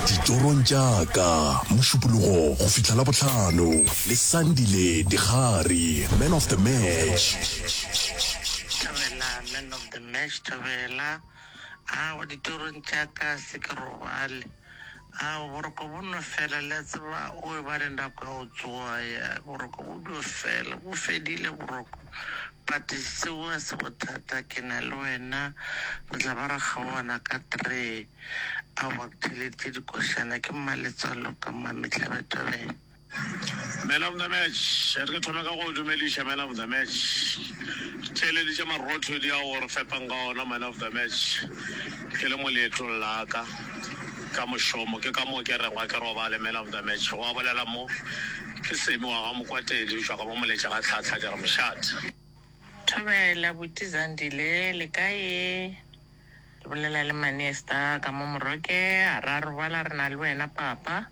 ditorong tša ka mošupologo go fihla la bohlano le sandile digare man of the match Thabela, man of the match, Thabela. Ah, wa ditorong tša ka se ke robale. Ao, boroko bo nno fela, le a tseba, o eba le nako ya go tsoga, ya, boroko bo dio fela. Bo fedile, boroko. But seo ga se bothata, ke na le wena, re tla ba ra kgaogana ka three. Aowa, ke theeleditše dikošana, ke mmaletswalo ka Mmamehlabethabeng. Man of the match, a re ke thome ka go o dumediša man of the match. Ke theeleditše marothodi ao o re fepang ka ona man of the match ke le mo leetong la ka ka mošomo, ke ka moo ke rego a ke robale man of the match, gwa bolela mo. Ke Semi wa ga Mokwatedi eupša ga ba mo letše ga tlhahla, ke re mošate. Thobela, abuti Zandile le kae? Ke bolela le Manesta ka mo Moroke, a re a robala re na le wena papa.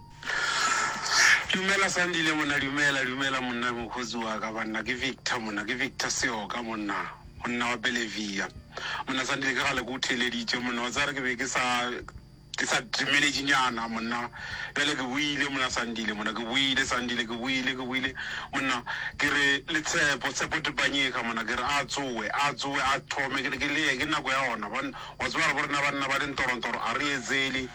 Dumela Sandile monna dumela dumela monna mokgotsi wa ka banna ke Victor monna ke Victor Seoka monna monna wa Bellevia monna Sandile ke kgale ke o theeleditše monna wa tsare ke be ke sa ke sa dumeletše nyana monna bjale ke boile monna Sandile monna ke boile Sandile ke boile ke boile monna ke re le Tshepo Tshepo Dipanyeka monna ke re a tsoe a tsoe a thome ke le ke le ke nako ya ona bona wa tseba gore bo rena banna ba le ntorontoro a re etsele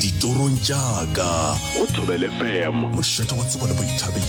ditorong tša ka go thobele fm mošate wa tsebo le boithabišo